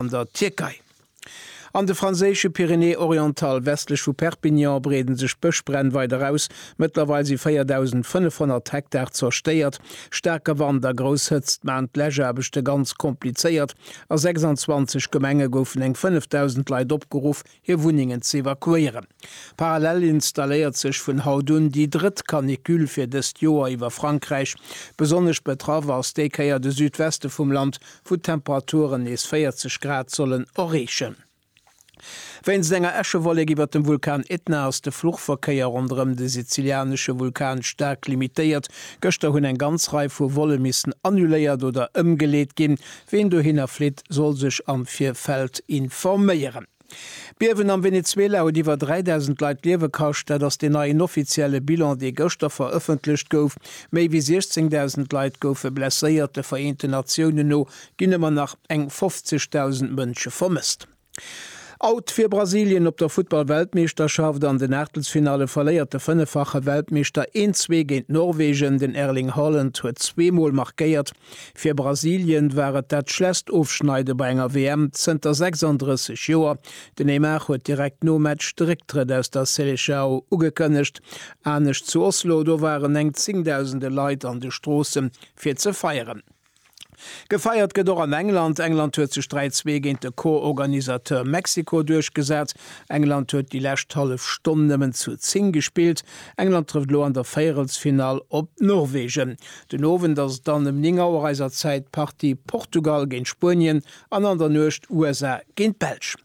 an der Tierkei. An de franséische Pyrénées-Orientales westlech vu Perpignan breeden sech d'Bëschbränn weider aus. Mëttlerweil si 4.500 Hektar zerstéiert. Staarke Wand a grouss Hëtzt maachen d'Läschaarbechte ganz komplizéiert. A 26 Gemenge goufen eng 5.000 Leit opgeruff, hir Wunnengen z'evakuéieren. Parallel installéiert sech vun haut un déi drëtt Canicule fir dëst Joer iwwer Frankräich. Besonnesch betraff ass déi Kéier de Südweste vum Land, wou d'Temperaturen nees 40 Grad sollen erreechen. Wéinst enger Äschewollek iwwer dem Vulkan Etna ass de Fluchverkéier ronderëm de sizilianesche Vulkan staark limitéiert. Gëschter hunn eng ganz Rei vu Volle missen annuléiert oder ëmgeleet ginn. Ween dohinner flitt, soll sech am Virfeld informéieren. D'Biewen am Venezuela huet iwwer 3.000 Leit d'Liewe kascht. Dat ass deen neien offizielle Bilan, dee gëschter verëffentlecht gouf. Méi wéi 16.000 Leit goufe blesséiert. De Vereenten Natiounen no ginn ëmmer nach eng 50.000 Mënsche vermësst. Out fir Brasilien op der Futtball-Weltmeeschterschaft, An den Aachtelsfinalle verléiert de fënneffache Weltmeeschter 1-zwee géint Norwegen. Den Erling Haaland huet zwee Mol markéiert. Fir Brasilien war et dat schlesst Ofschneide bei enger WM zënter 36 Joer. Den Neymar huet direkt nom Match de Récktrëtt aus der Seleçao ugekënnegt. Anescht zu Oslo, do waren eng zéngdausende Leit an de Stroosse fir ze feieren. Gefeiert gëtt och an England. England huet sech 3, 2 géint de Co-Organisateur Mexiko duerchgesat. England huet déi lescht hallef Stonn nëmmen zu 10 gespillt. England trëfft elo an der Véierelsfinall op Norwegen. Den Owend ass et dann ëm 9 Auer eiser Zäit d'Partie Portugal géint Spuenien an an der Nuecht USA géint d'Belsch.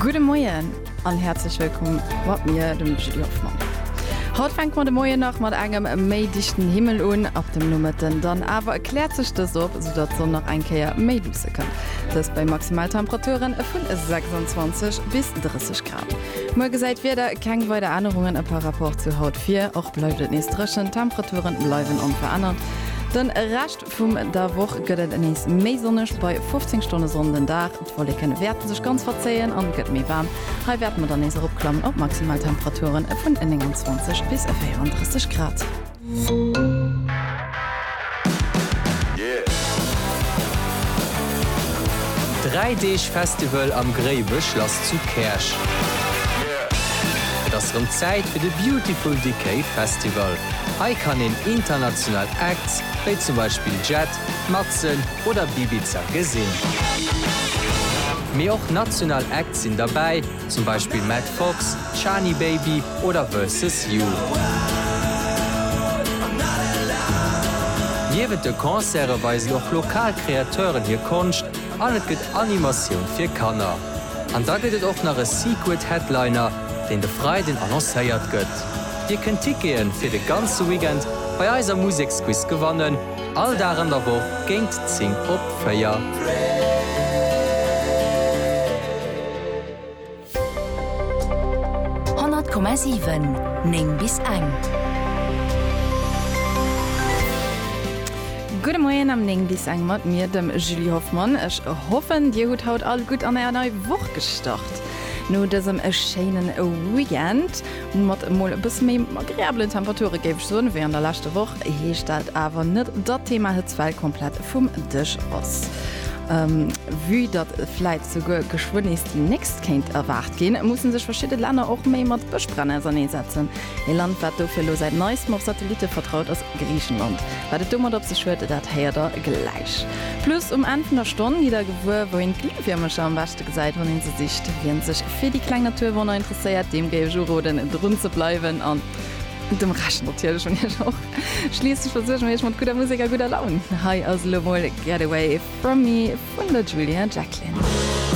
Gudde Moien an häerzlech wëllkomm mat mir, dem Julie Hoffmann. Haut fänke mer de Moien nach mat engem méi dichten Himmel un, ab dem Nomëtten dann awer kläert sech dëst op, sou datt d'Sonn nach eng Kéier méi luusse kënnt, dëst bei Maximaltemperaturen vun 26 bis 30 Grad. Muer gesäit d'Wieder keng weider Ännerungen e par rapport zu haut vir. Och bleift et nees dréchen, d'Temperaturen bleiwen onverännert. De Rescht vum der Woch gëtt et nees méi sonneg, bei 15 Stonne Sonn den Dag. D'Wolleken wäerte sech ganz verzéien an et gëtt méi waarm. Hei wäerte mer dann nees eropklammen op maximal Temperaturen vun 29 bis 34 Grad. Dräi Deeg Festival am Gréiwechlass zu Käerch. Et ass rëm Zäit fir de Beautiful Decay Festival. Hei kann een international Acts wéi zum Beispill Jet, Matzen oder Bibiza gesinn. Mee och national Acts sinn derbäi. zum Beispill Matt Fox, Shani Baby oder Versus You. Niewent de Concerte weisen och lokal Kreateuren hir Konscht an et gëtt Animatioun fir Kanner. An da gëtt et och nach e Secret Headliner, deen de Freiden annoncéiert gëtt. Dir kënnt Tickete fir de ganze Weekend bei eiser Museksquiz gewannen. All Dag an der Woch géint 10 op 4. Honnert Komma siwen, néng bis eng. Gudde Moien am néng bis eng mat mir, dem Julie Hoffmann. Ech hoffen, dir hutt haut all gutt an är nei Woch gestart no dësem schéine Weekend. Mat emol e bësse méi agreabelen Temperature géif ech soen, wéi an der leschter Woch, heescht dat awer net, datt d'Thema Hëtzwell komplett vum Dësch ass. Vue datt vläit souguer geschwënn nees déi nächst kéint erwaart ginn, musse sech verschidde Länner och méi mat Bëschbränn auserneesetzen. Ee Land, wat dofir elo säit neistem op Satellitte vertraut, ass Griichenland. Wat et domat op sech huet, dat héiert der gläich. Plus um Enn vun der Stonn gitt der gewuer, wouhin d'Glühwiermercher am beschten. D'Foto gesäit, wann een se sicht. Wien sech fir déi kleng Naturwonner interesséiert, deem géif ech uroden drun ze bleiwen an dem Rescht natierlech un iech och. Schliisslech versuerge mir iech mat gudder Musek a gudder Laun. Hei ass elo mol Get Away From Me vun der Julia Jacklin.